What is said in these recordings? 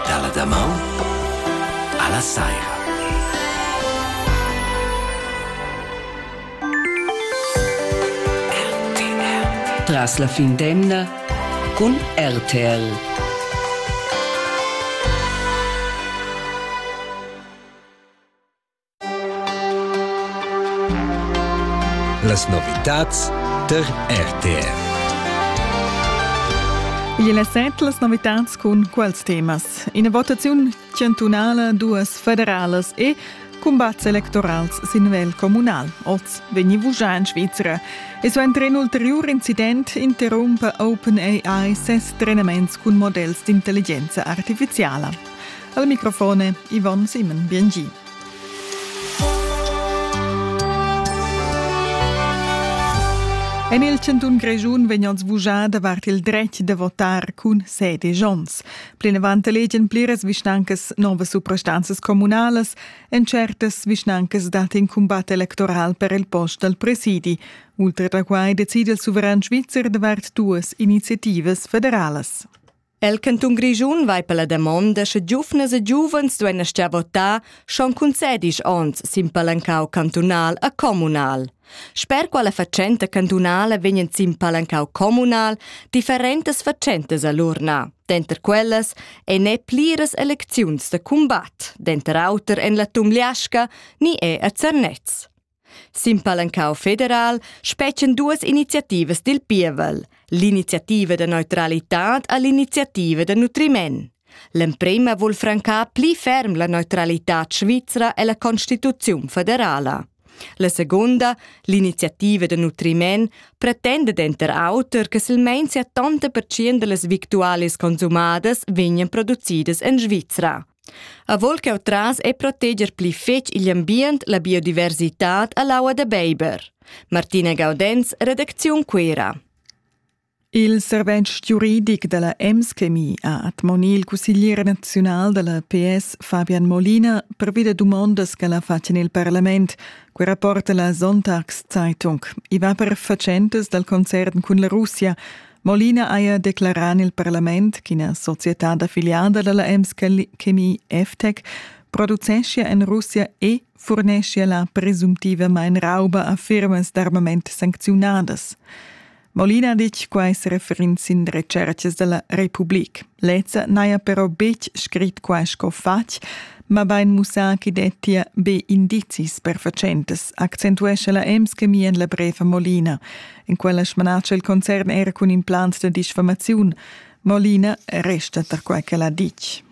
Dalla damaun alla saira. Tras la fin d'emna cun RTL. Las novitads tar RTR. Igl è set las novitads cun quals temas. Ina votaziun chantunala, duas federalas e cumbats electorals sin nivel communal. Oz vegni vuschà en Svizra. E suenter in ulteriur incident interrumpa OpenAI ses trenaments cun models d'intelligenza artifiziala. Al microfone Yvonne Simon, biengi. En il Cantun Grischun vegnan svugà davart il dretg da votar cun sede Jons. Plinavant legen pliras vischnancas novas suprastanzas communalas en certas vischnancas dat in combat electoral per il post dal presidi. Ultra da quai decide il suveran svizzer davart duas iniziativas federalas. El cantun Grischun vai per la damonda sche giuvnas e giuvens duein astgar votar schon cun sedisch onns sin palancau cantunal a communal. Sper quella fatschenta cantunala vegnan sin palancau communal differentas fatschentas a l'urna. Denter quellas ei ne pliras elecziuns da combat, denter auter en la Tumliasca ni è a Zernez. Sin palancau federal spetgan duas iniziativas dil pievel, l'iniziativa da neutralitad e l'iniziativa da nutriment. L'emprema vul francar pli ferm la neutralitad svizra ella constituziun federala. La segunda, l'iniziativa da nutriment, pretenda denter auter che silmein 70% dallas victualis consumadas vegnan producidas en Svizra. Avol ch'jeu tras e proteger pli fetg igl ambient, la biodiversitad e l'aua da beiber. Martina Gaudenz, redacziun Cuera. Il servetsch giuridic dalla EMSCMI ha admoni il cusseglier naziunal dalla PS Fabian Molina pervi da dumondas che la fa en il parlament. Quei rapporta la Sonntagszeitung. I va per fatschentas dal concern cun la Russia. Molina haja declarà en il parlament ch'ina societad affiliada da la Emskel Chemie FTEC produceschia en Russia e furneschia la presumptivamain rauba a firmas d'armament sancziunadas. Molina ha ditg quai se referind sin recercas da la Republik. Lezza n'haja però betg scrit quai sco fatg, mabain mussà ch'i dettia be indizis per fatschentas, accentuescha la Ems Chemie en la brev a Molina. In quella smanatscha il concern era cun implants da disfamaziun. Molina resta tar quai ch'el ha ditg.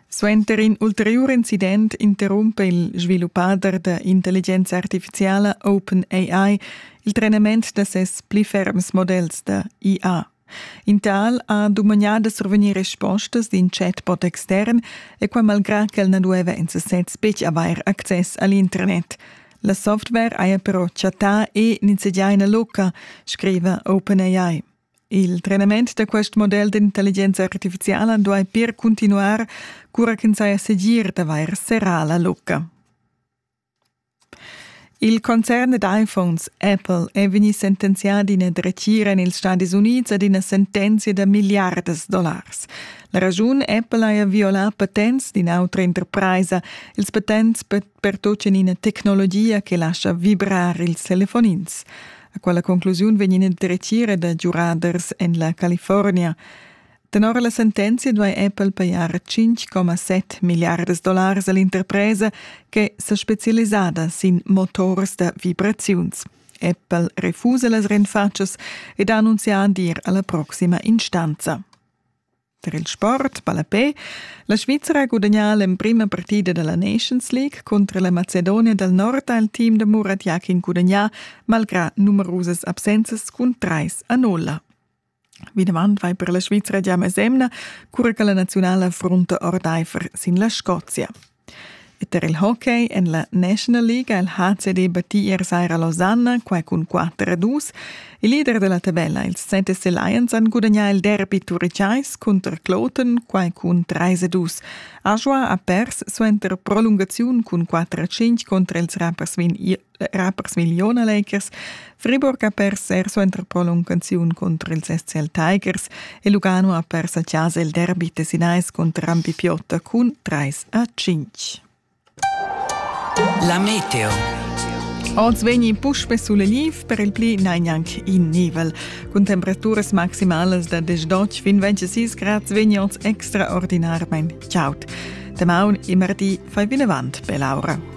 Suenter in ulteriur incident interrumpe il sviluppader da intelligenza artificiala OpenAI il trenament da ses pli ferms modells da IA. In tal ha dumagnà da survegnir respostas d'in chatbot extern e quai malgrà ch'el na dueva en sasez betg avair access a l'internet. La software haja però chattà e nizzegià ina lucca, scriva OpenAI. Il trenament da quest model d'intelligenza artifiziala duai pir cuntinuar, cura ch'ins saja segir d'avair serrà la lucca. Il concern ed iPhones Apple è vegnì sentenzià d'ina dretgira en ils Stadis Unids ad ina sentenzia da milliardas dollars. La raschun Apple haja violà patents d'in'autra interpraisa ils patents per pertutgant ina tecnologia che lascha vibrar ils telefonins. A quella conclusiun vegn ina dretgira da giuraders en la California. Tenor la sentenzia duai Apple pajar 5,7 milliardas dollars a l'interpresa che sa spezialisada sin motors da vibraziuns. Apple refusa las renfatschas ed ha annunzià d'ir a la proxima instanza. Per il sport, ballapé, la Svizzera ha gudagnà l'emprima partida da la Nations League contro la Macedonia dal Nord ha il team da Murat Yakin gudagnà malgrà numerusas absenzas cun trais a nulla. Vinavant vai per la Svizra gia mesemna, cura che la naziunala frunta ordaifer sin la Scozia. E per il hockey en la National League ha il HCD battì ier saira Lausanne, quai cun 4 a 2. Il leader della tabella, ils Sentese Lions, han gudagnà il derby turicais cunter Kloten, quai cun 3 a 2. Ajoa ha pers suenter prolungaziun cun 4 a 5 contro ils rappersvin era per Smiglion Lakers, Friburg ha pers suenter prolung canzun contro ils SCL Tigers e Lugano ha pers a Chasa il derby tessinais contro Rampi Piotta cun 3 a 5. La meteo. Oz vegni puspe sulle liv per il pli negnanc in nivel. Cun temperaturas maximalas da 18 fin 26 grad vegni oz extraordinarmain chaud. Temaun e mardi fai vinavant per l'aura.